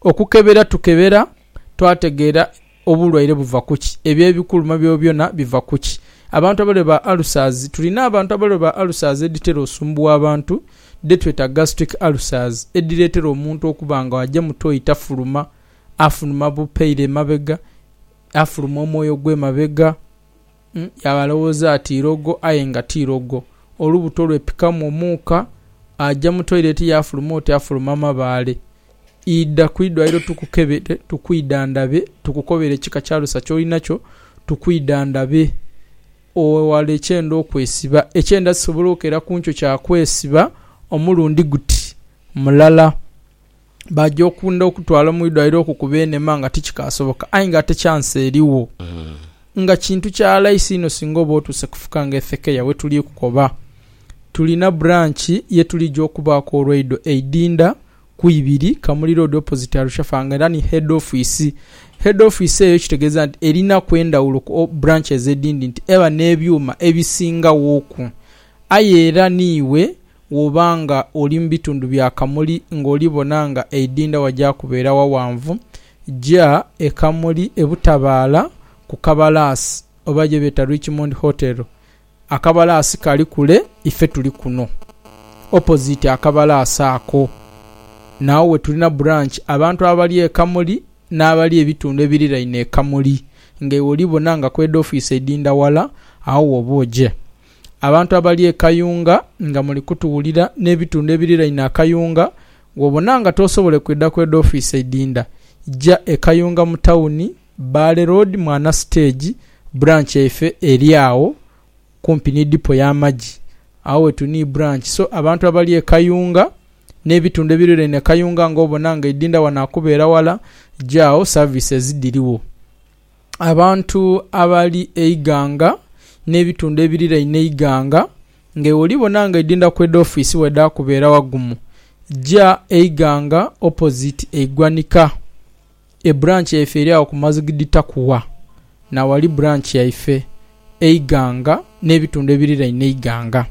Okukebera tukebera twategeera obulwaire buva ku ki, ebyo ebikuluma byobyona biva ku ki. Abantu abalwaire ba ulcers, tulina abantu abalwaire ba ulcers edhitera osumbuwa abantu dhetweta gastric ulcers edhireetera omuntu okuba nga aja mu toyi tafuluma, afunuma bupeire emabega, afuluma omwoyo ogw'emabega. Yaaba alowooza ati irogo aye nga ti irogo. Olubuto lwepikamu omuuka, aja mu toilet yaafuluma oti afuluma mabaale. Idha ku idwaliro tukukebere, tukwidhandhabe, tukukobere ekika kya alusa ky'olinakyo, tukwidhandhabe owewale ekyenda okwesiba. Ekyenda sisobola okeera ku nkyo kya kwesiba omulundi guti mulala. baja okunda okutwala mu idwaliro okukuba enema nga tikikasoboka aye nga ate chansi erigho nga kintu kya laisi inho singa oba otuuse kufuka ng'efekeya. We tuli kukoba tulina buranki ye tulija okubaaku olwaido e Idinda ku ibiri Kamuli Road opoziti Arusha Fa nga era ni heedi ofiisi. Heedi ofiisi eyo kitegeeza nti erinaku endhawulo ku buranches edhindi nti eba n'ebyuma ebisingaghoku aye era niiwe Bw'oba nga oli mu bitundu bya Kamuli ng'oli bona nga eidhindha waja kubeera ghawanvu, ja e Kamuli e Butabaala ku kabalaasi oba gye beeta Richmond Hotel. Akabalaasi kali kule, ife tuli kuno opoziti akabalaasi ako. N'agho we tulina buranki abantu abali e Kamuli n'abali ebitundu ebiriraine e Kamuli. Nga iwe oli bona nga ku heedi ofiisi eidhindha ghala, agho w'oba oje. Abantu abali e Kayunga nga muli kutuwulira n'ebitundu ebiriraine akayunga, bw'obona nga toosobole kwidha kw'edho ofiisi eidhindha, ja e Kayunga mu tawuni, Bbaale Road, Mwana Siteegi, Branch yaife eri agho kumpi ni Dipo y'amagi. Agho we tuli ni Branch. So abantu abali e Kayunga n'ebitundu ebiriraine Kayunga nga obona nga eidhindha wano akubeera wala, ja agho services dhirigho. abantu abali eighanga n'ebitundu ebiriraine eighanga, nga iwe oli bona nga edindha ku edho ofiisi bwe dha kubeera wagumu, ja eighanga opposite eigwanika. Ebranch yaife eri agho ku Mazigidi Takuwa, na wali branch yaife. eighanga n'ebitundu ebiriraine eighanga.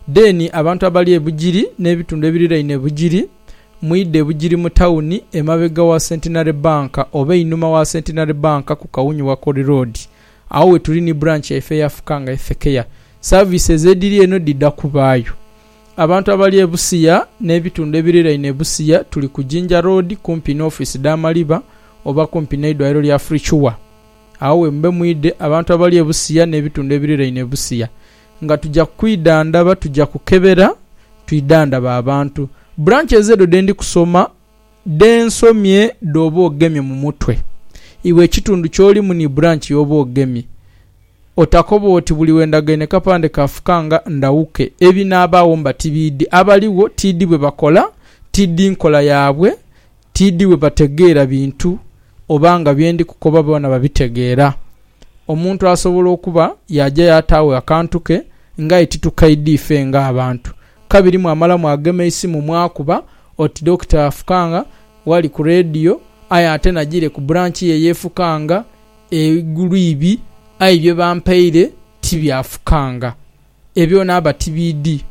Dheeni abantu abali e Bugiri n'ebitundu ebiriraine e Bugiri, mwidhe e Bugiri mu tauni emabega wa Centenary Bank oba einhuma wa Centenary Bank ku Kawunyu Wakoli Road. Agho we tuli ni branch yaife eya Fukanga Health Care. Services edhiri eno dhidha kubaayo. Abantu abali e Busia n'ebitundu ebiriraine e Busia tuli ku Jinja Road kumpi ni ofiisi dha Maliba oba kumpi n'eidwaliro lya Free Cure. Agho we mube mwidhe abantu abali e busiya n'ebitundu ebiriraine e busiya, nga tuja kwidhandhaba, tuja kukebera twidhandhabe abantu. Branches edho dhe ndi kusoma dhe nsomye dh'oba ogemye mu mutwe. Iwe ekitundu ky'olimu ni branch y'oba ogemye, otakoba oti buli we ndagaine kapande ka fukanga ndhawuke. Ebinaabagho mba tibiidhi. Abaligho tiidhi bwe bakola, tiidhi nkola yaabwe, Tiidhi bwe bategeera bintu oba nga bye ndi kukoba boona babitegeera. Omuntu asobola okuba yaaja yaataagho akantu ke ng'aye titukaidha ife ng'abantu. Kabiri mwamala mwagema eisimu mwakuba oti Dokita afukanga wali ku leediyo aye ate najiire ku bulanki ye ey'efukanga eiguluibi aye bye bampaire ti byafukanga. Ebyo naaba tibiidhi.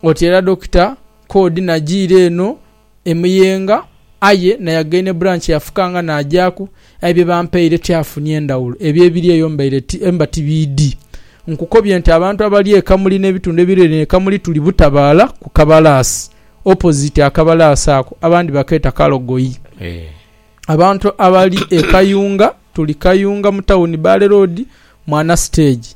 Oti era Dokita Kodi najiira eno e Muyenga aye nayagaine e Branch yafukanga najaku aye bye bampaire tyafunie ndhawulo. Ebyo ebiri eyo mbaire ti mba tibiidhi. Nkukobye nti abantu abali e Kamuli n'ebitundu ebiriraine e Kamuli tuli Butabaala ku Kabalaasi, opposite akabalaasi ako abandi bakeeta Kalogoyi. Abantu abali e Kayunga tuli Kayunga mu tawuni Bbaale Road, Mwana Stage.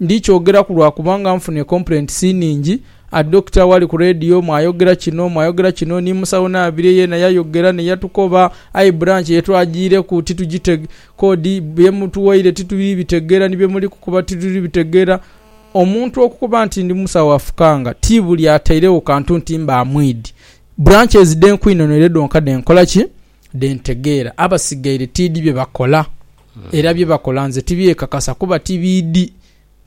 Ndi kyogeraku lwa kubanga nfunye complaints nhingi. A doctor wali ku radio mwayogera kino, mwayogera kino, ni musawo Nabire yeena yayogera ne yatukoba. Aye branch ye twajiireku titugitege, kodi bye mutuwaire tituli bitegeera ni bye muli kukoba tituli bitegeera. Omuntu okukoba nti ndi musawo afukanga, ti buli atairegho kantu nti mba mwidhi. Branches dhe nkwinonere dhonka dhe nkola ki? dhe ntegeera, abasigaire tiidhi bye bakola. Era bye bakola nze tibyekakasa kuba ti biidhi.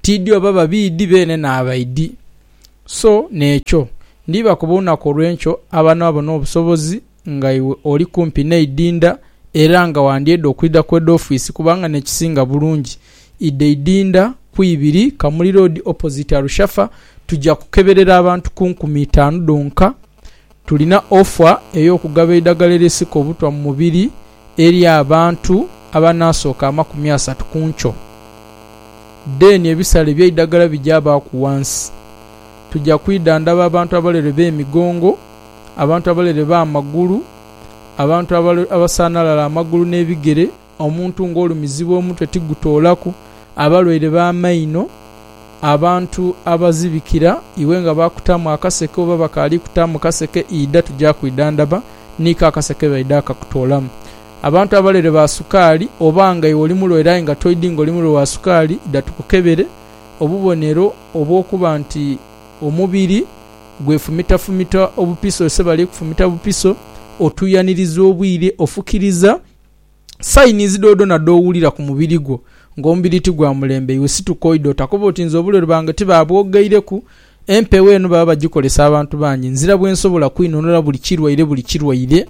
Tiidhi oba babiidhi beene n'abaidhi. So n'ekyo, ndibakoba olunaku olw'enkyo abanaba bona obusobozi nga iwe oli kumpi n'eidinda era nga wandyeeda okwidha ku head office kubanga n'ekisinga bulungi idha eidinda ku ibiri Kamuli Road opposite Arushafa tuja kukeberera abantu ku nkumi itaanu dhonka Tulina ofa ey'okugaba eidagala erisika obutwa mu mubiri eri abantu abanaasooka amakumi asatu ku nkyo. Dheeni ebisale by'eidagala bigyabaaku ghansi. Tuja kwidhandhaba abantu abalere b'emigongo, abantu abalere b'amagulu, abantu abasaanalala amagulu n'ebigere, Omuntu ng'olumizibwa omutwe tigutoolaku, abalwaire b'amaino, abantu abazibikira, iwe nga baakutaamu akaseke oba bakaali kutaamu kaseke, idha tuja kwidhandhaba, niiko akaseke baidha akakutoolamu. Abantu abalwaire ba sukaali, oba nga iwe oli mulwaire aye nga toidhi ng'oli mulwaire wa sukaali, idha tukukebere obubonero obw'okuba nti omubiri gwefumitafumita obupiso, ise bali kufumita bupiso, otuuyaniriza obwire, ofukiriza, Sayinizi dhoodhoona dh'owulira ku mubiri gwo ng'omubiri ti gwa mulembe, iwe situka oidhe. Otakoba oti nze obulwere bwange tibaabwogeireku. Empewo eno baba bagikolesa abantu bangi. Nzira bwensobola kwinunula buli kirwaire buli kirwaire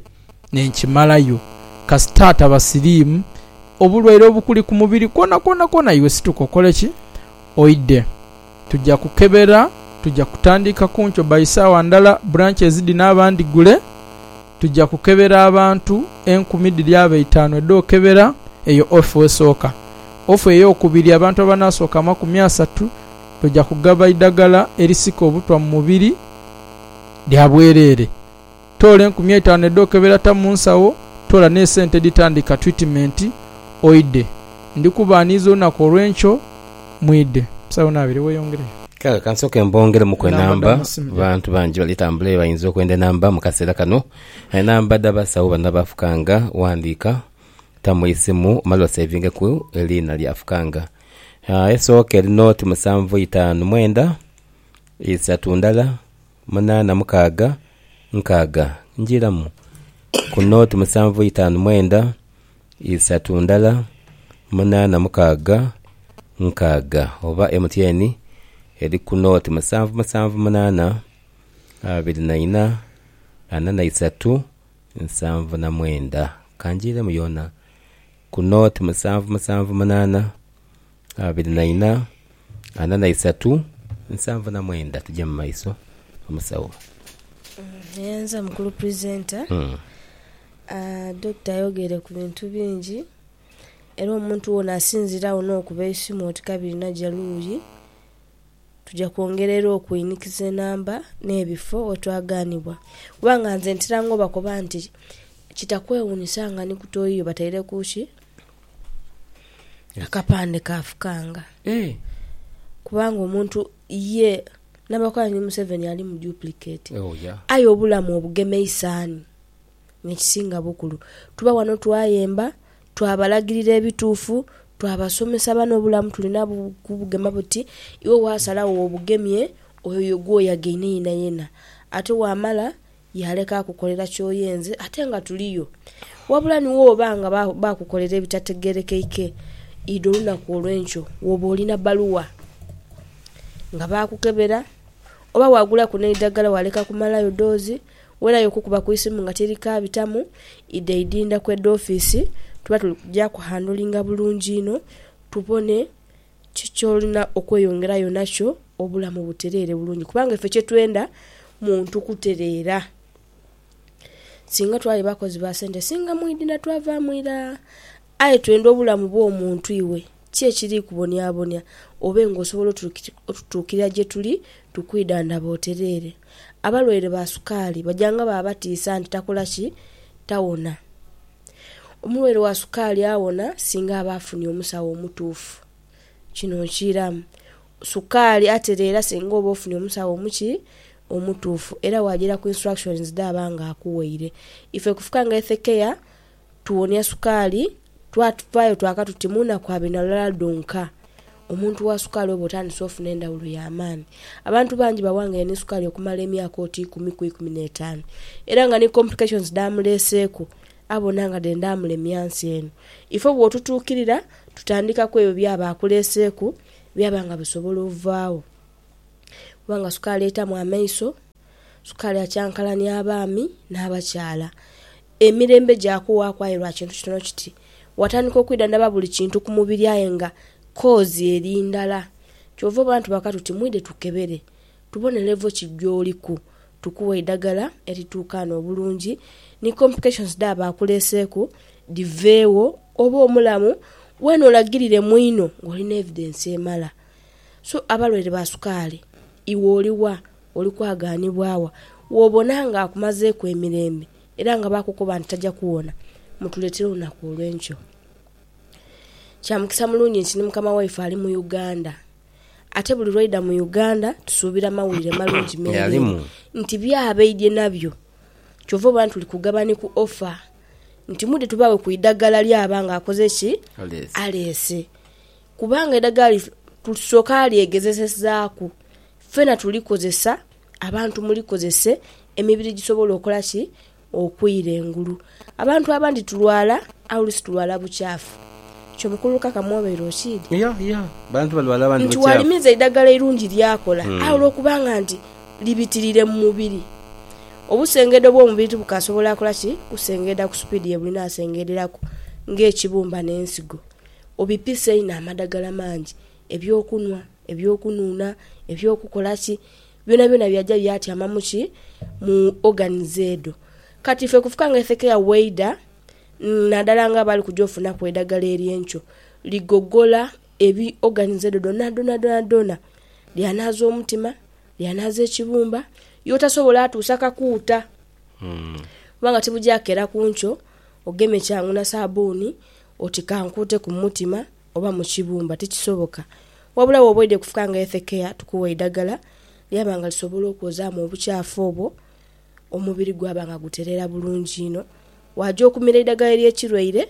ne nkimalayo. Kasita ataba siriimu obulwaire obukuli ku mubiri kwonakwona kwona, iwe situka okole ki? Oidhe. tuja kukebera, tuja kutandika ku nkyo by saawa ndala branches dhino abandhigule, tuja kukebera abantu enkumi dhiri abe itaanu edhokebera eyo off esooka. Off eyokubiri abantu abanasooka amakumi asatu tuja kugaba idhagala erisika obutwa mu mubiri lya bwerere. Toola enkumi eitanu edh'okebera ta mu nsawo, toola n'esente edhitandika twitimenti, oidhe. Ndi kubaaniiza olunaku olw'enkyo, mwidhe. Musawo naabire weeyongereyo. Kale ka nsooke mbongeremuku enamba. Bantu bangi bali tambula aye bainza okwenda enamba mu kaseera kano. Enamba dh'abasawo bano abaafukanga, ghandiika, ta mu isimu omale oseevingeku eriina ly'afukanga. Esooka eri noti musanvu itaanu mwenda, isatu ndala. munaana mukaaga nkaaga njiramu ku nooti musanvu itaanu mwenda isatu ndala munaana mukaaga nkaaga oba MTN eri ku nooti musanvu musanvu munaana abiri na ina ana na isatu nsanvu na mwenda. Ka njiremu yoona ku nooti musanvu musanvu munaana. Abiri na ina, ana na isatu, nsanvu na mwenda. Tuje mu maiso, omusawo. Nyanza mukulu presenter Doctor ayogere ku bintu bingi era omuntu wona asinzire agho nokuba eisimu oti kabirina ja luuyi tuja kwongera era okwinikiza enamba ne bifo we twaganibwa kubanga nze ntera nga obakoba nti kitakwewunyisa nga ni ku toyiyo bataireku ki Akapande kaafukanga. Eeh. Kubanga omuntu ye nabakola ni museveni ali mu duplicate Oh yeah. aye obulamu obugema eisanhi nekisinga bukulu tuba wano twayemba twabalagirira ebituufu twabasomesa bani obulamu tulina kubugema buti iwe wasalagho wobugemye oyo gweyagaine yenayena ate wamala Yaaleka akukolera ky'oyenze ate nga tuliyo. Wabula ni woba nga baakukolera ebitategeerekeike, idha olunaku olw'enkyo woba olina bbaluwa nga baakukebera oba waagulaku n'eidagala waaleka kumalayo doozi, werayo okukuba ku isimu nga teri kaabitamu, idha idinda ku heedi ofiisi tuba tuli kugya kuhandolinga bulungi inho tubone Kiki ky'olina okweyongerayo nakyo obulamu butereere bulungi? Kubanga ife kye twenda muntu kutereera. Singa twali bakozi ba sente, singa mwidhina twavaamu ira. Aye twenda obulamu bw'omuntu iwe. Ki ekiri kubonyabonya obe ng'osobola otutuukirira gye tuli tukwidhandhaba otereere? Abalwaire ba sukaali baja nga baba batiisa nti takola ki? Tawona. Omulwaire wa sukaali awona singa aba afunye omusawo omutuufu. Kino nkiiramu. Sukaali atereera singa oba ofunye omusawo omuki? Omutuufu. Era waajaira ku instructions dhaaba nga akuwaire. Ife ku Fuka nga Health Care, tuwonia sukaali, twavaayo twaka tuti mu naku abiri na lulala dhonka. Omuntu wa sukaali oba otandise ofuna endhawulo ya maani. Abantu bangi bawangaine ni sukaali okumala emyaka oti ikumi ku ikumi n'etaanu era nga ni complications dh'amuleeseeku abona nga dhenda amulemya nsi eno. Ife bw'otutuukirira, tutandika ku ebyo by'aba akuleeseeku byaba nga bisobola ovaagho kuba nga sukaali eitamu amaiso. Sukaali akyankalania abaami n'abakyala. Emirembe gyakuwaaku aye lwa kintu kitono kiti. Watandika okwidhandhaba buli kintu ku mubiri aye nga koozi eri ndala. Kyova obona tubaka tuti mwidhe tukebere tubone levo ki gyoliku tukughe eidhagala erituukaana obulungi ni complications dhaaba akuleeseeku dhiveegho obe omulamu weene olagirire mwino ng'oli n'evidence emala. So abalwaire ba sukaali iwe oli wa? Oli kwagaanibwa wa w'obona ng'akumazeeku emirembe era nga baakukoba nti taja kuwona? Mutuleetere olunaku olw'enkyo. Kya mukisa mulungi nti ni mukama waife ali mu Uganda. Ate buli lw'aidha mu Uganda tusuubira mawulire malungi meereere nti by'abaidhye nabyo. Kyova obona tuli kugaba ni ku offer nti mwidhe tubaghe ku idagala ly'aba ng'akoze ki? Aleese. Kubanga eidagala lino tusooka lyegezesezaaku Fena tuli kozesa, abantu muli kozese emibiri gisobole okola ki? Okwira engulu. Abantu abandi tulwala aye olusi tulwala bukyafu. Kyo mukulu Kaka mwobeire okiidhi? Nti walimiza eidagala eirungi lyakola aye olwokubanga nti libitirire mu mubiri, obusengeedo bwomubiri tibukasobola kola ki? Kusengeeda ku supiidi yebulina asengeederaku nga ekibumba nensigo. Obipisa einho amadagala mangi eby'okunhwa, eby'okunuuna, eby'okukola ki, byonabyona byaja byatyama mu ki? Mu organs edho. Kati ife kufuka nga ife keya waidha, naadala nga bali kuja ofunaku eidhagala ery'enkyo, ligogola ebi, organs edho dhonadhonadhonadhona, lyanaaza omutima, lyanaaza ekibumba, y'otasobola atuusa kakuuta. Kubanga tibuja kukera ku nkyo, ogemye kyangu na saabbuuni, oti kankuuteku mu mutima. oba mu kibumba tikisoboka. Wabula bw'oba oidhie kufuka nga Health Care tukuwa eidagala lyaba nga lisobola okwozaamu obukyafu obwo omubiri gwaba nga gutereera bulungi inho. Waaja okumira eidagala ery'ekirwaire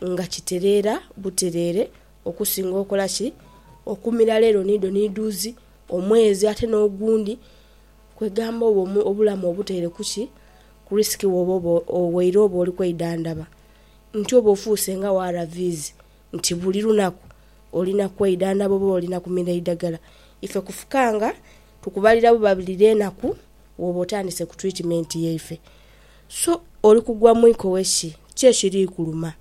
nga kitereera butereere okusinga okola ki? Okumira leero ni dho ni dhuuzi, omwezi ate n'ogundi. Kwegamba oba obulamu obuteire ku ki? Ku risk woba oba, waire oba oli kweidhandhaba. nti oba ofuuse nga ARVs nti buli lunaku olina kweidhandhaba oba olina kumira eidhagala, ife kufukanga tukubalira buba buli lwenaku woba otandise ku twitimeenti yaife. So oli kugwa mu ikowe ki? Ki ekiri kuluma?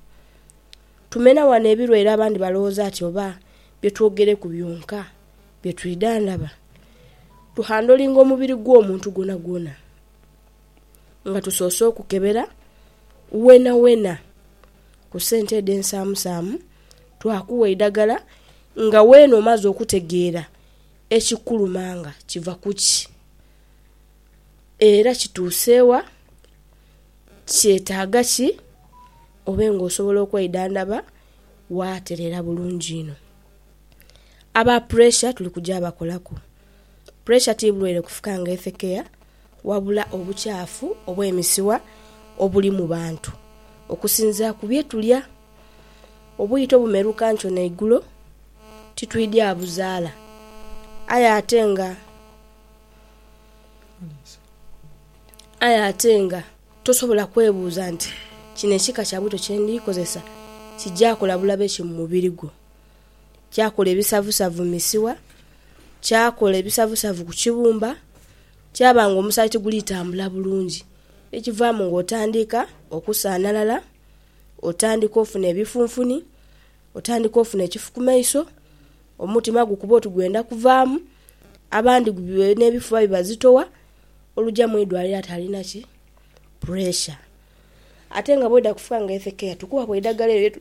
Tumena wano ebilwaire abandi balowooza ti oba bye twogereku byonka bye twidhandhaba? Tuhandolinga omubiri gw'omuntu gwonagwona. nga tusoose okukebera weenaweena ku sente edho ensaamusaamu, twakugha eidhagala nga weena omaze okutegeera ekikuluma nga kiva ku ki, era kituuse wa, kyetaaga ki obe ng'osobola okwidhandhaba waatereera bulungi inho. Aba puresha tuli kugya bakolaku, puresha ti bulwaire kufuka nga efekeya. wabula obukyafu obw'emisiwa obuli mu bantu. Okusinziira ku bye tulya, obwito bumeruka nkyo na igulo titwidya buzaala. Aye ate nga aye ate nga tosobola kwebuuza nti kino ekika kya bwito kye ndi kozesa kija kola bulabe ki mu mubiri gwo. kyakola ebisavusavu mu misiwa, kyakola ebisavusavu ku kibumba, kyaba nga omusaayi tiguli tambula bulungi. Ekivaamu nga otandika okusanhalala, otandika ofuna ebifunfuni, otandika ofuna ekifu ku maiso, omutima gukuba oti gwenda kuvaamu, abandi nh'ebifuba bibazitowa, oluja mu idwaliro ati alina ki? Puresha. Ate nga bwodha kufuka nga health care, tukuwa ku eidagala elyo...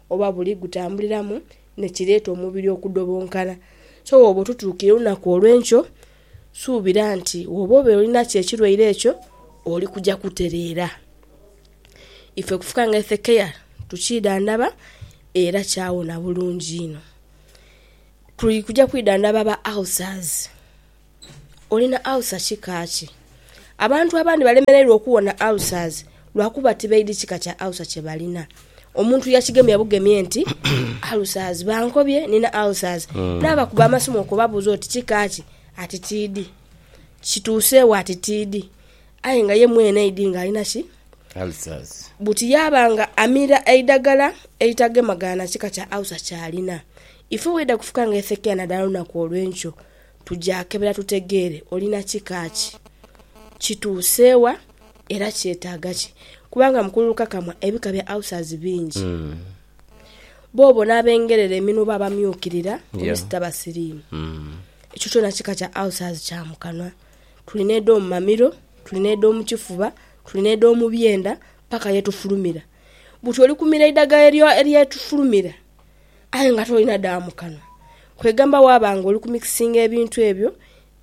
oba buli gutambuliramu nekireeta omubiri okudobonkana. So bwoba otutuukire olunaku olwenkyo suubira nti woba obeire olinakyo ekirwaire ekyo oli kuja kutereera. Ife kufuka nga health care tukyidhandhaba era kyawona bulungi inho. Tuli kuja kwidhandhaba ba ulcers. Oli na alusa kika ki? Abantu abandhi balemereirwa okuwona alusazi lwa kuba tibaidhi kika kya alusa kye balina. Omuntu yakigemya bugemye nti, Alusazi, bankobye nina alusazi. Naabakuba amasimu okubabuuza oti kika ki, ati tiidhi. Kituuseewo ati tiidhi. Aye nga ye mwene aidhi ng'ali na ki? Alusazi. Buti yaaba nga amira eidagala eritagema-gana kika kya alusa ky'alina. Ife bw'eidha kufuka nga esekeya naddala olunaku olw'enkyo, Tuja kebera tutegeere olina kika ki, kituuse wa, era kyetaaga ki. Kubanga mu kululukakamwa ebika bya ulcers bingi. Boobo n'abengerera eminwe oba abamyukirira ku misita basiriimu. Ekyo kyona kika kya ulcers kya mu kanwa. Tuli n'edh'omu mamiro, tuli n'edh'omu kifuba, tuli n'edh'omu byenda paka ye tufulumira. Buti oli kumira eidhagala ery'etufulumira. aye nga tolina dha mu kanwa, kwegamba waaba nga oli kumikisinga ebintu ebyo,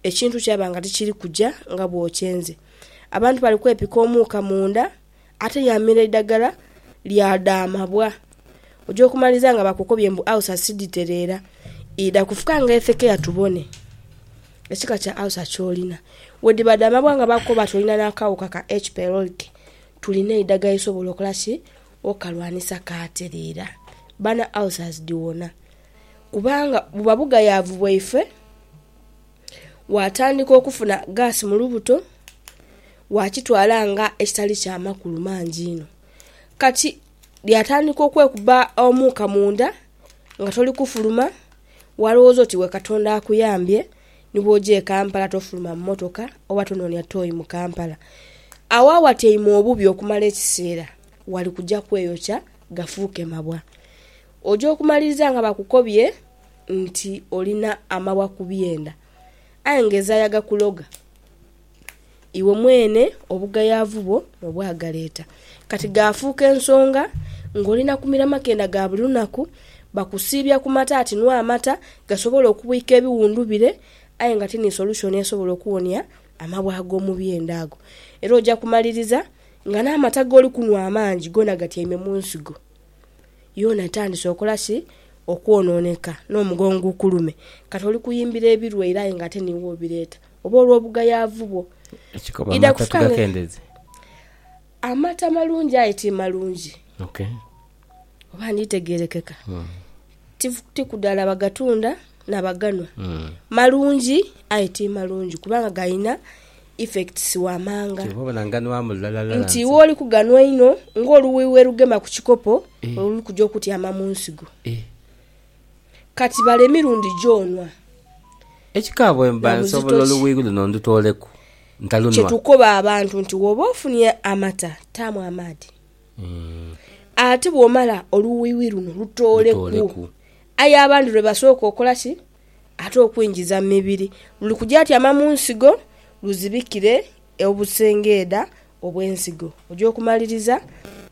ekintu kyaba nga tikiri kuja nga bw'okyenze. Abantu bali kwepika omuuka munda, ate yamira eidagala lya dha mabwa. Oja okumaliza nga bakukobye mbu ulcer si dhitereera. Idha kufuka nga ethekeya tubone ekika kya ulcer ky'olina. Bwedhiba dha mabwa nga bakukoba nti olina n'akaghuka ka H-pylori, tulina eidagala erisobola okola ki? Okalwanisa kaatereera, bana ulcers dhiwona. Kubanga buba bugayaavu bwaife, waatandika okufuna gaasi mu lubuto, waakitwala nga ekitali kya makulu mangi inho. Kati yaatandika okwekuba omuuka munda nga toli kufuluma, walowooza oti iwe Katonda akuyambye Ni bw'oja e Kampala tofuluma mu mmotoka oba tonoonia tooyi mu Kampala. Agho awatyaime obubi okumala ekiseera wali kuja kweyokya gafuuke mabwa. Oja okumaliriza nga bakukobye nti olina amabwa ku byenda aye ng'ezaaya gakuloga. Iwe mwene obugayaavu bwo n'obwagaleeta, kati gaafuuka ensonga ng'oli na kumira makenda ga buli lunaku. Bakusiibya ku mata ati nwa amata, gasobole okubwika ebiwundu bire, aye nga ti ni solushoni esobola okuwonia amabwa ag'omu byenda ago. Era oja kumaliriza nga n'amata g'oli kunwa amangi goona gatyaime mu nsigo. Yoona etandise okola ki? Okwonooneka, n'omugongo gukulume. Kati oli kuyimbira ebirwaire aye nga ate niiwe obireeta. oba olw'obugayaavu bwo. Ekikomo amata tugakendeze. Amata malungi aye ti malungi. Ok. Oba nditegeerekeka? Ti ku dala bagatunda na baganhwa. Malungi aye ti malungi kubanga galina effects wamanga. Kyova obona nganhwamu lulala. Nti iwe oli kuganhwa einho ng'oluwi werugema ku kikopo, luli kuja okutyama mu nsigo. Kati bala emirundi gy'onwa. Ekika bwe mba nsobola oluwuigh luno ndutooleku, ntalunwa. Kye tukoba abantu nti woba ofunye amata taamu amaadhi. Ate bwomala oluwuigh luno lutooleku. Aye abandi lwe basooka okola ki? Ate okwingiza mu mibiri. Luli kuja tyama mu nsigo luzibikire obusengeedha obw'ensigo. Oja okumaliriza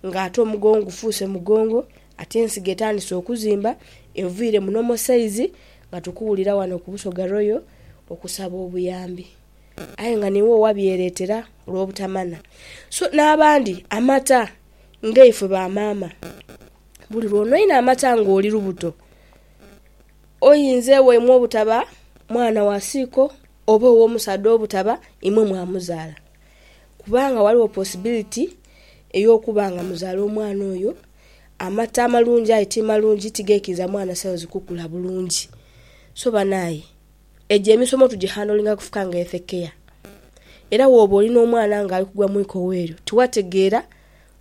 nga ate omugongo gufuuse mugongo. Ati ensigo etandise okuzimba eviire muno Mosaizi nga tukuwulira wano ku Busoga Royal okusaba obuyambi aye nga niiwe owabyereetera olw'obutamana so n'abandi amata nga ifwe ba maama buli lw'onoinha amata nga oli lubuto oyinze waimwe obutaba mwana wa siiko oba ow'omusaadha obutaba imwe mwamuzaala kubanga ghaligho posibiliti ey'okuba nga muzaala omwana oyo Amata amalungi aye ti malungi ti geikiriza mwana cells kukula bulungi. So banaye egyo emisomo tugyi handlinga kufuka nga health care. Era woba oli n'omwana nga ali kugwa mu ikowa eryo tiwategeera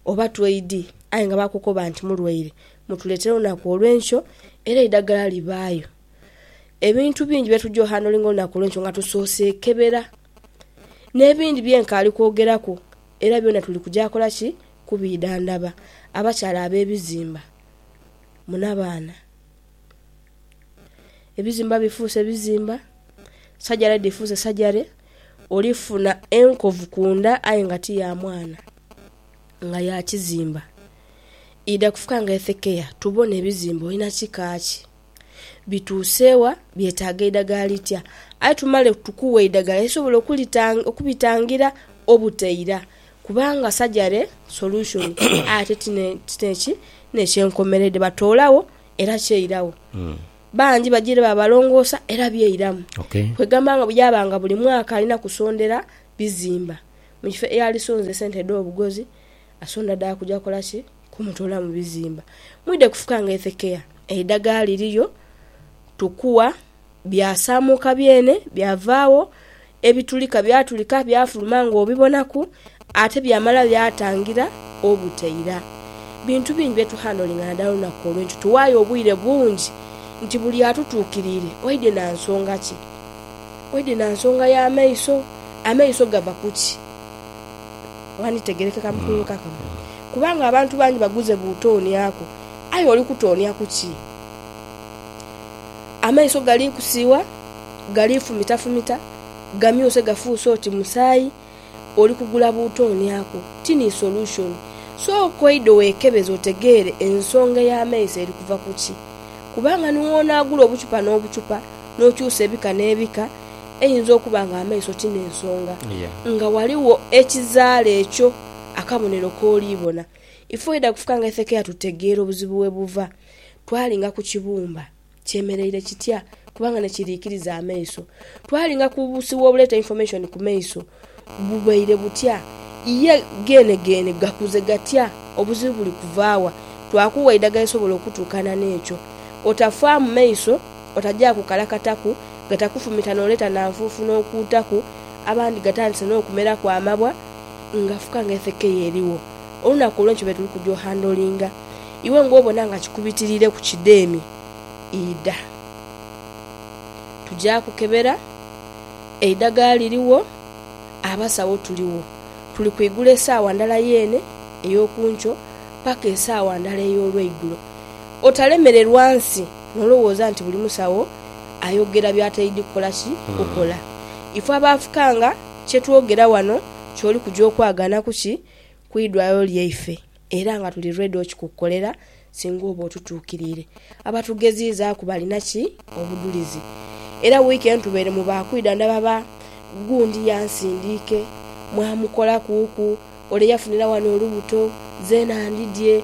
oba twaid aye nga bakukoba nti mulwaire mutuleetere olunaku olw'enkyo era eidagala libaayo. Ebintu bingi bye tugya ohandlinga olunaku olw'enkyo nga tusoose kebera. N'ebindi bye nkaali kwogeraku era byona tuli kuja kola ki? Kubiidhandhaba. Abakyala ab'ebizimba mu nabaana. Ebizimba bifuuse bizimba, sajare dhifuuse sajare, oli funa enkovu ku nda aye nga ti ya mwana, nga ya kizimba. Idha kufuka nga ethekeya tubone ebizimba olina kika ki? bituuse wa, byetaaga eidagala litya. Aye tumale tukuwe eidagala erisobola okubitangira obutaira kubanga sajare solution aye ate ti neki, ti n'ekyenkomeredde. Batoolagho era kyairagho. Bangi baja ere babalongoosa era byairamu. Kwegamba nga yaaba nga buli mwaka alina kusondera bizimba mu kifo eyali sonza esente edh'obugozi, Asunda dha kuja kola ki? Kumutoola mu bizimba. Mwidhe kufuka nga Hezekia. Eidagala liriyo, tukua, byasaamuuka byene, byavaagho, ebitulika byatulika, byafuluma ng'obibonaku, ate byamala byatangira obuteira. Bintu bingi bye tuhandolinga naadala olunaku olwo nti tuwaayo obwire bungi nti buli atutuukiriire oidhi na nsonga ki? Oidhi na nsonga ya maiso? Amaiso gava ku ki? Ghanditegerekeka mu kuyoyoka kuno, kubanga abantu bangi baguze buutooniaku. Aye oli kutoonia ku ki? Amaiso gali kusiiwa, gali fumitafumita, gamyuse gafuuse oti musaayi. Oli kugula buutooniaku. Tini solution. Sooka oidhe weekebeze otegeere ensonga ey'amaiso eri kuva ku ki. Kubanga ni woonaagula obuchupa n'obuchupa, n'okyusa ebika n'ebika, eyinza okuba nga amaiso ti n'ensonga, nga ghaligho ekizaala ekyo akabonero k'oli bona. Ife oidha kufuka nga Hesekia tutegeera obuzibu we buva. Twalinga ku kibumba kyemereire kitya, kubanga ni kiriikiriza amaiso. Twalinga ku busiwa obuleeta information ku maiso. bubaire butya? Ye geenegeene gakuze gatya? Obuzibu buli kuva wa? Twakuwa eidagala erisobola okutuukana n'ekyo. Otafaamu maiso, otajaaku kalakataku, gatakufumita n'oleeta na nfuufu n'okuutaku, abandi gatandise n'okumeraku amabwa nga fuka nga efekeya erigho. Olunaku olwo nikyo be tuli kuja ohandolinga. Iwe ng'obona nga kikubitiriireku kidheemi, idha. Tuja kukebera. Eidhagala lirigho, abasawo tuligho. Tuli kwigula esaawa ndala yeene ey'okunkyo paka esaawa ndala ey'olweigulo. Otalemererwa nsi n'olowooza nti buli musawo ayogera by'ataidhi kukola ki? Kukola. Ife abaafukanga kye twogera wano ky'oli kuja okwagaanaku ki? Ku idwaliro lyaife. Era nga tuli ready okikukolera singa oba otutuukiriire. Abatugeziizaaku balina ki? Obudhulizi. Era wiiki eno tubeeremu ba kwidha ndaba ba gundi yansindiike, mwamukolakuuku, ole yafunira wano olubuto, zeena ndidhye.